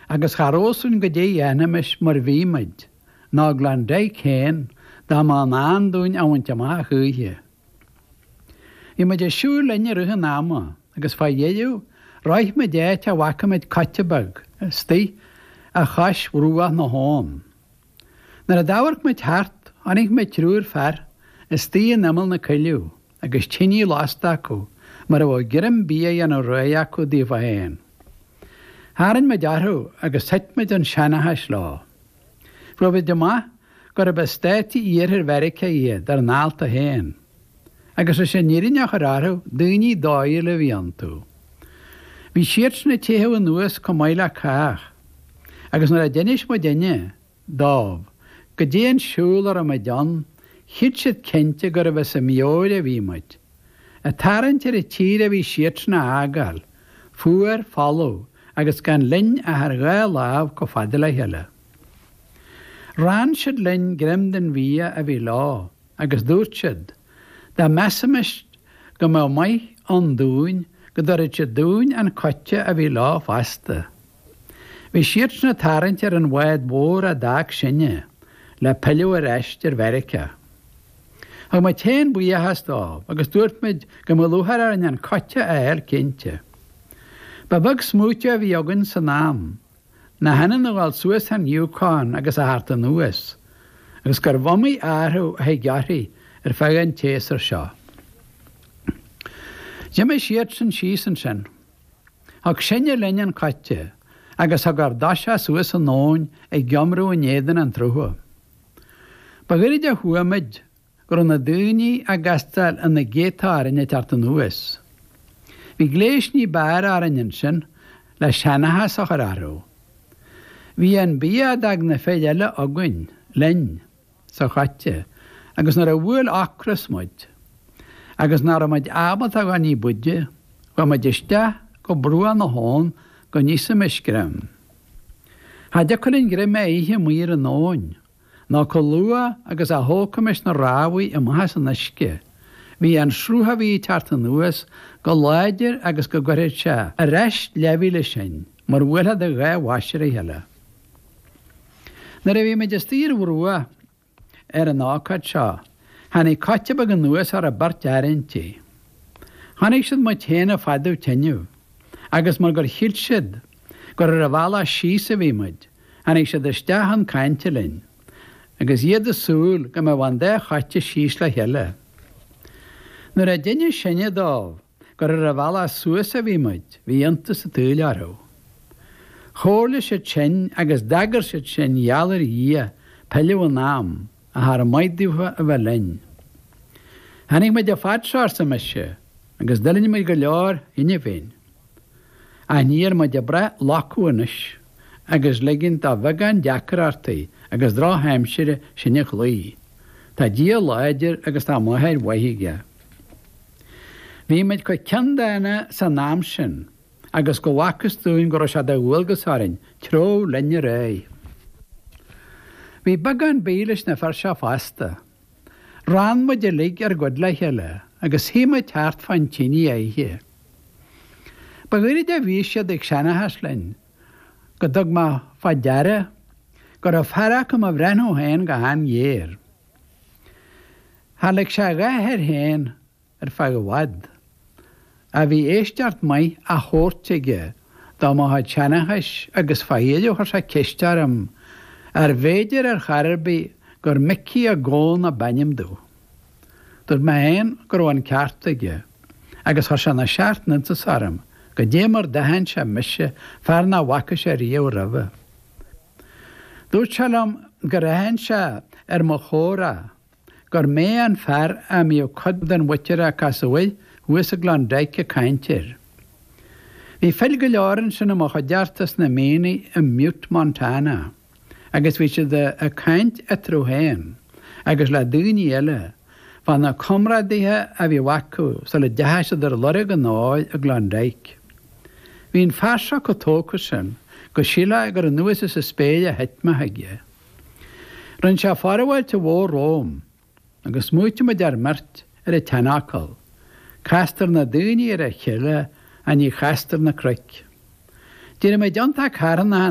Agus cha rabh fhios againn goidé dhéanfaimis mar bhí muid, ná i gKlondyke féin, dá mbeadh i ndán dúinn a bhaint amach a choíche. Bhí muid ag siúl linn i rith an ama, agus fá dheireadh, shroich muid áit a bhfaca muid coite beag istigh a chois bhruach na habhann. Nuair a d'amharc muid thart, chonaic muid triúr fear istigh in imeall na coilleadh. agus tinidh lasta acu, mar a bheadh greim bídh á dhéanamh réidh acu dóibh féin. Tharraing muid orthu agus thit muid chun seanchais leo. Fuair muid amach gurb as státaí iarthair Mheiriceá iad ar ár ndálta féin, agus leis an fhírinne a chur orthu, daoine dóighiúla a bhí iontu. Bhí siadsan ag teitheadh anuas comh maith le cách, agus nuair a d'inis muidinne, dóibh goidé an siúl a raibh muid ann, shíl siad cinnte gurbh as ár meabhair a bhí muid. Ag tarraingt ar an tír a bhí siadsan a fhágáil, fuar, folamh agus gan linn ach ár dhá lámh chomh fada le chéile. Rann siad linn greim den bhia a bhí leo agus dúirt siad, dá measaimis go mbeadh maith ann dúinn, go dtabharfadh siad dúinn an coite a bhí leo fosta. Bhí siadsan ag tarraingt ar an bhád mhór a d'fhág sinne le pilleadh ar ais ar Mheiriceá. Thug muid féin buíochas dóibh agus dúirt muid go mba lúcháir orainn an coite a fháil cinnte. Ba bheag smaoitiú a bhí againn san am, nach ionann a dhul suas an Yukon agus a theacht anuas, agus gurbh iomaí athrú a thiocfadh uirthi ar feadh an tséasúir seo. D'imigh siadsan síos ansin. Thug sinne linn an coite agus thug ár dtoiseach suas an abhainn ag iomramh in éadan an tsrutha. Ba ghairid a chuaigh muid go raibh na daoine á gcastáil ina gcéadta orainn ag teacht anuas. Bhí gléas ní b'fhearr orainn ansin le seanchas a chur orthu. Bhí an bia a d'fhág na fir eile againn linn. sa choite, agus nuair a bhuail ocras muid, agus nach raibh muid ábalta a dhul ní b'fhaide, chuaigh muid isteach go bruach na habhann go n-íosfaimis greim. Cha dtiocfadh linn greim a ithe amuigh ar an abhainn, nó comh luath agus a thógfaimis na rámhaí amach as an uisce, bhí an sruth a bhí ag teacht anuas comh láidir agus go gcuirfeadh sé ar ais leathmhíle sinn mar bhuailfeá do dhá bhois ar a chéile. Nuair a bhí muid istigh ar bhruach ar an ócáid seo, tháinig coite beag anuas a raibh beirt fhear inti. Chonaic siad muid féin ag fadú tineadh, agus mar gur shíl siad gur ar an bhealach síos a bhí muid, tháinig siad isteach chun cainte linn, agus iad ag súil go mbeadh an dá choite síos le chéile. Nuair a d'inis sinne dóibh, gur ar a bhealach suas a bhí muid, bhí iontas an tsaoil orthu. Chomhairligh siad sinn agus d'agair siad sinn gheall ar Dhia pilleadh in am, ach char mhaith daofa a bheith linn. Tháinig muid a fhad seo, arsa mise, agus d'fhuiling muid go leor cheana féin. Ach níl muid ag brath locadh anois agus ligean do bheagán deacrachtaí agus drochaimsire sinn a chloí. Tá Dia láidir agus tá máthair mhaith aige. Bhí muid chomh ceanndána san am sin agus go bhfacthas dúinn go raibh sé de dhualgas orainn treabhadh linn ar aghaidh. Bhí beagán bídh leis na fir seo fosta. Rann muid uilig ár gcuid le chéile agus shuigh muid thart fán tine oíche. Ba ghairid a bhí siad ag seanchas linn go dtug mé fá deara go raibh fear acu do mo bhreathnú féin go han-ghéar. Char lig sé a dhath air féin ar feadh i bhfad. Ach bhí éisteacht mhaith á thabhairt aige do mo chuid seanchais agus fá dheireadh chuir sé ceist orm arbh fhéidir ar chor ar bith gur Micí Mac Gabhann ab ainm domh. Dúirt mé féin go raibh an ceart aige agus chuir sé na seacht n-iontas orm goidé mar d'aithin sé mise, fear nach bhfaca sé riamh roimhe. Dúirt sé liom gur aithin sé ar mo chomhrá gur mé an fear a mbíodh cuid den mhuintir a casadh dó thuas i gClondyke ag caint air. Bhí fir go leor ansin i mo chuideachta sna mianaigh i mButte, Montana, agus bhí siad ag caint eatarthu féin agus le daoine eile fá na comrádaithe a bhíodh acu sula dteachaidh siad ar lorg an óir i gClondyke. Bhí an fear seo chomh tógtha sin go sílfeá gur anuas as an spéir a thit mé chuige. Rinne sé forbháilte mhór romham agus smaoitigh muid ár mbeirt ar an tseanfhocal, Castar na daoine ar a chéile ach ní chastar na cnoic. D'éirigh muid iontach thar na